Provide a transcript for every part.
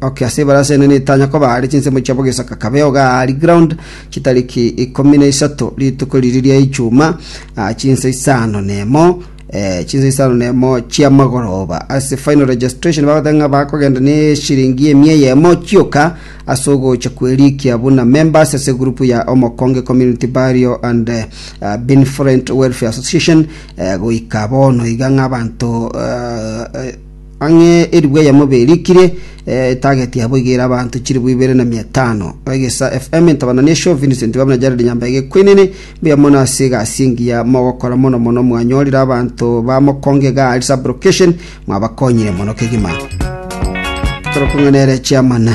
Okay, ase ebarasa ene netanya koba are chinsemo chiabo gesoka kabe ogari ground chitariki ikomi na isato rituko riri ria ichuma ah, chinsa isano nemo eh, chinsa isano nemo chia magoroba ase final registration bagotenga bakogenda ne shilingi emia yemo chioka ase ogocha kwerikia buna members ase group ya omokonge community barrio and eh, ah, benevolent welfare association eh, goika bono iga ng'a abanto eh, eh, Ang'e eribwe eyemo berikire, etageti yabo iga ere abanto chilifu ibere na mia etano. Egesa FM intabanane esio, Vincent Babu na Jared Nyambege ekwenene. Mbuya mono ase egasi engiya mogokora mono mono mwanyorire abanto ba mokonge iga ari sub location mwabakonyire mono kegima. Torokong'ana ere chairman.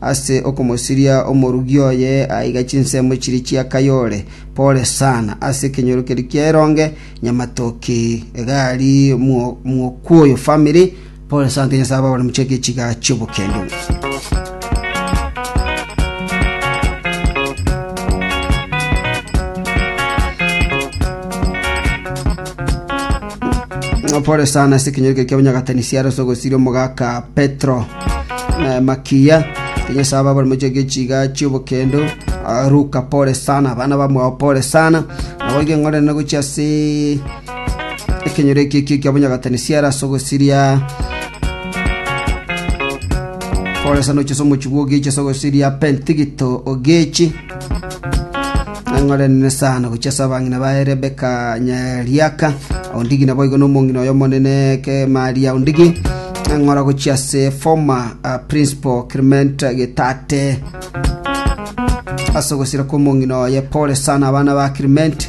Ase okomosiria omorugi oye aiga chinsemo chiria chia Kayole, pole sana, ase ekenyoro keria kia Eronge, Nyamatoki, egari, Mwokuoyo family, pole sante Nyasaye ababare mochake echiga chi'obokende. Pole sana ase ekenyoro keria kia Bonyagatani siaro ase ogosiria omogaka Petro. Eh, makiya kenyesa aba bari mochia gechiga chiobokendo Ah, ruka pole sana abana bamwao pole sana nabo igeng'orene gochia ase ekenyoro eki eki kia bonyagatani siara ase ogosiria pole sana ochese omochigwa ogechi ase ogosiria pentigito ogechi Nang'orenene sana gochia ase abang'ina baye Rebeka Nyariaka. Ondigi naboigo nomong'ina oyo omonene Kemaria Ondigi. Nang'ora gochia ase former uh, principal Clement Getate. Ase ogosira kw'omong'ina oye pole sana abana ba Clement.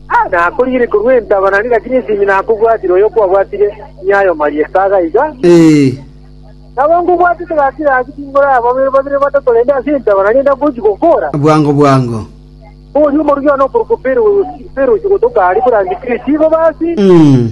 Na akoriire korwa entaba, na rigachia nesimi, na akobwatire oyo okwabwatire nyayo maria esaga iga. Ee. Nabo nkobwatete gaki gaki tinkoraba babere babere batato rende ase entaba, na rende akochi gokora. Bwango bwango. Oria omorugi one okorokwa Perusi, Perusi gotoka aria bw'Antikristo, igo basi. Mm.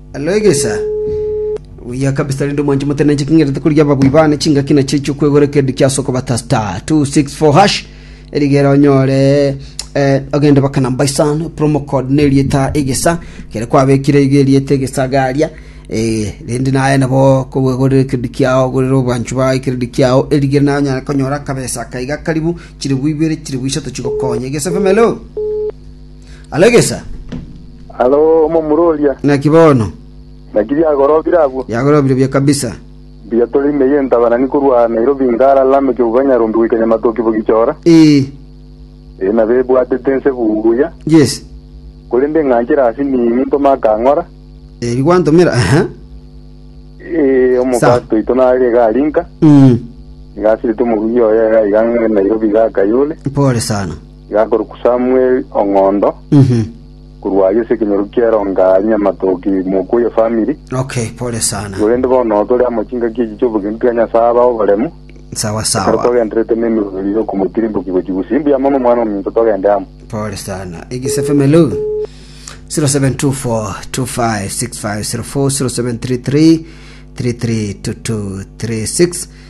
Alo egesa, obuya kabisa rende omwanchi omotenenche king'irete korigia ababui bane chingaki nachio echi'okwegora ekerendi ki'ase okobata star 264 hash erigere onyore eh, ogende baka namba isano promo code nerieta egesa kere kwabekire iga erieta egesa garia eh, rende naye nabo kogwegorera ekerendi kiao ogorere obwanchu bago ekerendi kiao erigere naye onyare konyora akabesa akaiga karibu chiribu ibere chiribu isato chigokonye egesa femelo Alegesa, Alo omomura oria, naki bono naki biagorobire abwo. biagorobire buya kabisa. Mbuya tore ime y'entabanani korwa Nairobi Ngara Lame Kebuba Nyarumbi goika Nyamatoki Bogichora, Ee, ee, nabo ebwatete inse buya, yes. korende ng'a nchire ase nini ntoma akang'ora, Ebi gwantomera, aha. ee, Sa. omokasto oito nare iga aria inka, Mm, iga asirete omorugi oye iga iga Nairobi iga Kayole. Pole sana. Igakorokwa Samweli ong'ondo, korwa ayio ase ekenyoro ki'eronga aye nyamatoki mokwo oye famiri. Okay, pole sana. Korende bono tore amo chingaki echi chi'obogenki bwa Nyasae abe oboremu, Sawa ekero sawa. togendererete nemeroberio y'okomotirimbokia gochia bosio. Mbuya mono omwana ominto togende amo. Pole sana. Igise Femelu 0724256504 0733 332236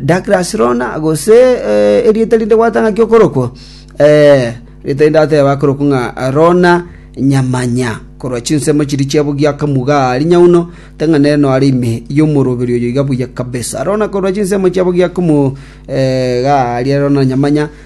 Douglas Rona, gose erieta rinde gwatanga ki okorokwa? Ee, rieta rinde ateba akorokwa ng'a Rona Nyamanya, korwa chinsemo chiria chia bogia akamuga aa rinyauno, te ng'a nere noare ime y'omoroberi oyo iga buya kabisa. Rona korwa chinsemo chia bogia akamuga aa Rona Nyamanya.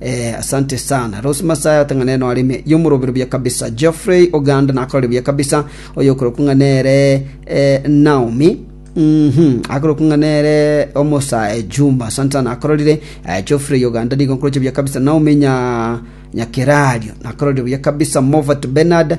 Eeh asante sana Rose Masaya otang'ane nore ime yomorobero buya kabisa Geoffrey Oganda nakorire buya kabisa oyo okorokwa ng'a nere eh, Naomi Mhm, akorokwa ng'a nere omosa eh, Juma asante sana akororire eh, Geoffrey Oganda nigo nkoroche buya kabisa Naomi nya nyakerario nakororire buya kabisa Movat Bernard